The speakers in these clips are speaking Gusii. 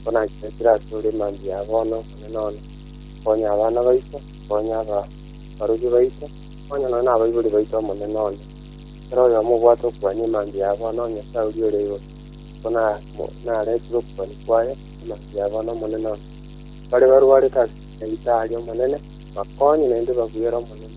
nkonanchorokire asore mambia ya bono, Omonene one, konya abana baito, konya abarubi baito, konya nonya nabaibori baito, Omonene one, kera oyomo obwate okwania emambia ya bono, O Nyasae oria ore igoro, nigo naretire okokwania kwaye emambia ya bono, Omonene one. Baria barwarete ase ebisaeri, Omonene, bakonye, naende babuere, Omonene,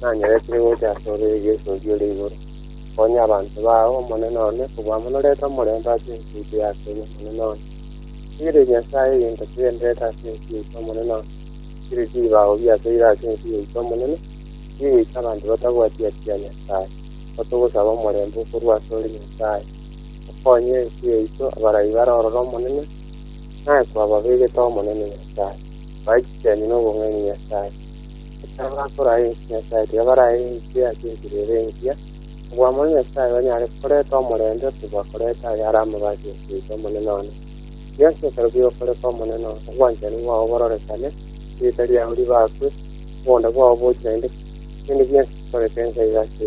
nanyeretire gocha asore egesoki ore igoro. Konya abanto bao, Omonene one, kobua amo norete omorembe ase ense yaito ya Kenya, Omonene one. Rigireria Nyasae egento kigendererete ase ense yaito, Omonene one. Rigireria ebibago biasoire ase ense yaito, Omonene, bigoita abanto batabwati-atia Nyasae. Nigo togosaba omorembe okorwa asore, Nyasae. Okonye ense yaito, abarai barorore Omonene, naye kwababegete Omonene Nyasae. Bae chichemi nobong'aini, Nyasae. Ekero bakoraa ense, Nyasae tiabaraae ense ase enchera ere engiya. Oboamwa na Nyasae banyare koreta omorembe kobua koreta ayare amabati ase goita Omonene one. Rigia ase ekero bigokoreka Omonene one, obwanchani bwao bororekane, erieta riao ribakwe, oboonda bwao bochire naende bionsi bikoreke ensa iga ase